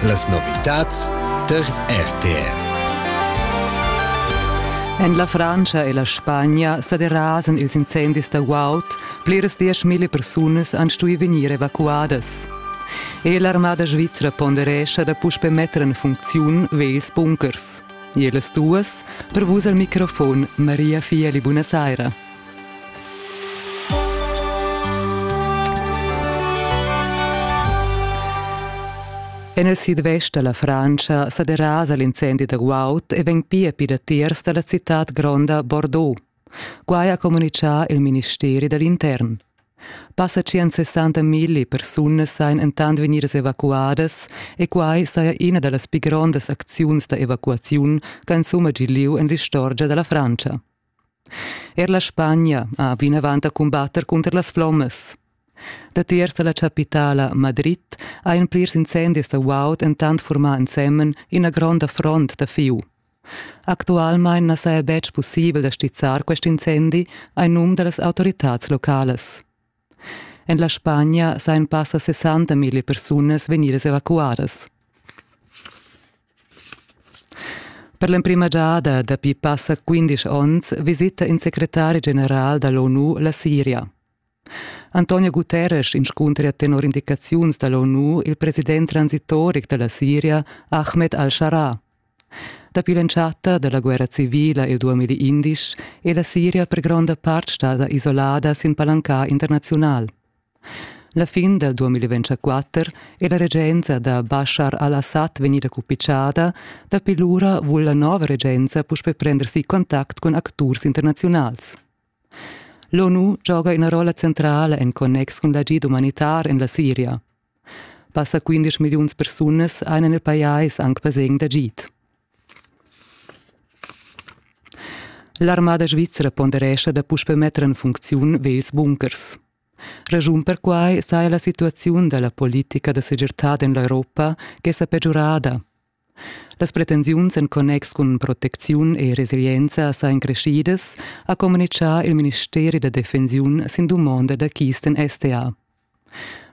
Las novitads tar RTR. En la Frantscha e la Spagna sa derasan ils incendis da guaud. Pliras dieschmilli persunas han stuì vegnir evacuadas. E l'armada svizra ponderescha da puspe metter en funcziun vels bunkers. E las duas, per vus al microfon Maria Fieli, buonasera. En il sidvest da la Frantscha sa derasa l'incendi da guaud e vegn pia pir datiers da la citad gronda Bordeaux. Quai ha communitgà il ministeri da l'intern. Passa 160 migli persunas sajan entant vegnidas evacuadas e quai saja ina da las pi grondas acziuns da evacuaziun che insumma giu lieu en l'istorgia da la Frantscha. Er la Spagna ha vinavant da cumbatter cunter las flommas. Datiers da la chapitala Madrid ha en plirs incendis da guaud entant furmà ensemen ina gronda front da fiu. Actualmain na saja betg pussibel da stizzar quest incendi, ein num da las autoritads localas. En la Spagna sajan passa 60 mila persunas vegnidas evacuadas. Per l'emprima giada dapi passa 15 onns visita in secretari general dall'ONU la Siria. Antonio Guterres inscuntra tenor indicaziuns dall'ONU il president transitoric dalla Siria, Ahmed al-Shara, Dapi l'entschatta dalla guerra civila il 2011 è la Siria per gronda part stada isolada sin palanca internaziunal. La fin del 2024 è la regenza da Bashar al-Assad vegnida cupicciada, dapi lura vul la nova regenza puspè prendersi contact con acturs internaziunals. L'ONU gioga ina rolla centrala en connex cun l'agid umanitar en la Siria. Passa quindesch milliuns persunas ein en il pajais aunc basegn d'agid. L'armada svizra ponderescha da puspe metter en funcziun vels bunkers. Ragiun per quai saja la situaziun da la politica da segirtad en l'Europa che sa pegiurada. Las pretensiuns en connex cun protecziun e resilienza sajan creschidas, ha communitgà il ministeri da defensiun sin dumonda da Kisten STA.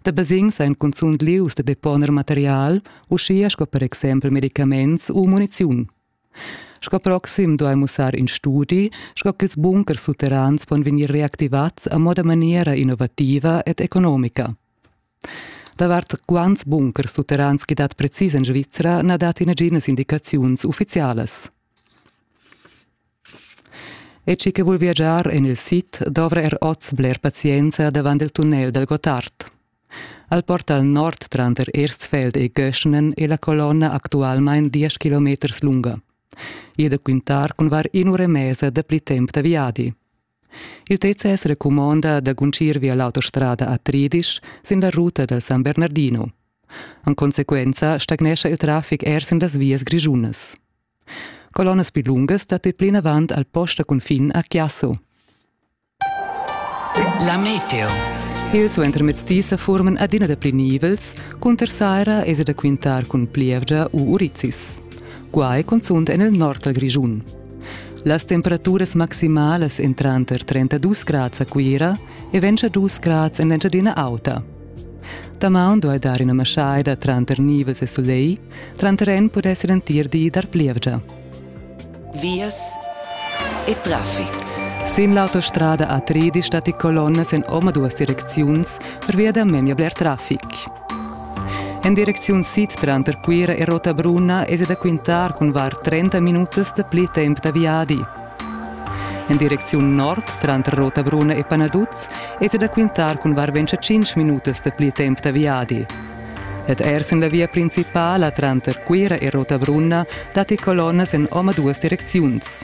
Da basegns ein cunzunt lius da deponer material, uschia sco per exempel medicaments u muniziun. Sco proxim duai mussar in studi, sco ch'ils bunkers sutterrans pon vegnir reactivats a moda maniera innovativa ed economica. Davart quants bunkers sutterrans ch'i dat precis en Svizra na dat naginas indicaziuns uffizialas. E chi che vul viagiar en il sid dovra er oz bler pazienza davant il tunnel dal Gottard. Al portal nord tranter Erstfeld e Göschenen è la colonna actualmain 10 km lunga. Ida quintar cun var in'ura e mesa dapli temp da viadi. Il TCS recumonda da guncir via l'autostrada a Tridisch sin la ruta da San Bernardino. En consequenza stagnescha il traffic er sin las vias grischunas. Colonnas più lungas datti plinavant al post da cunfin a Chiasso. La meteo. Il suentermezzdi sa forman adina da pli nivels, cunter saira es da quintar cun plievgia u urizis. Quai cunzunt en il nord dal Grischun. Las temperaturas maximalas èn tranter 32 grads a Cuira e 22 grads en l'Engiadina Auta. Damaun duai dar ina maschaida tranter nivels e sulegl, tranter en pudess l'entir di dar plievgia. Vias e traffic. Sin l'autostrada A3 stati colonnas en omaduas direcziuns pervia da memia bler traffic. En direcziun sid tranter Cuira e Rotabrunna es da quintar cun var 30 minutas da pli temp da viadi. En direcziun nord tranter Rotabrunna e Panaduz es da quintar cun var 25 minutas da pli temp da viadi. Ed ers en la via principala tranter Cuira e Rotabrunna datti colonnas en omaduas direcziuns.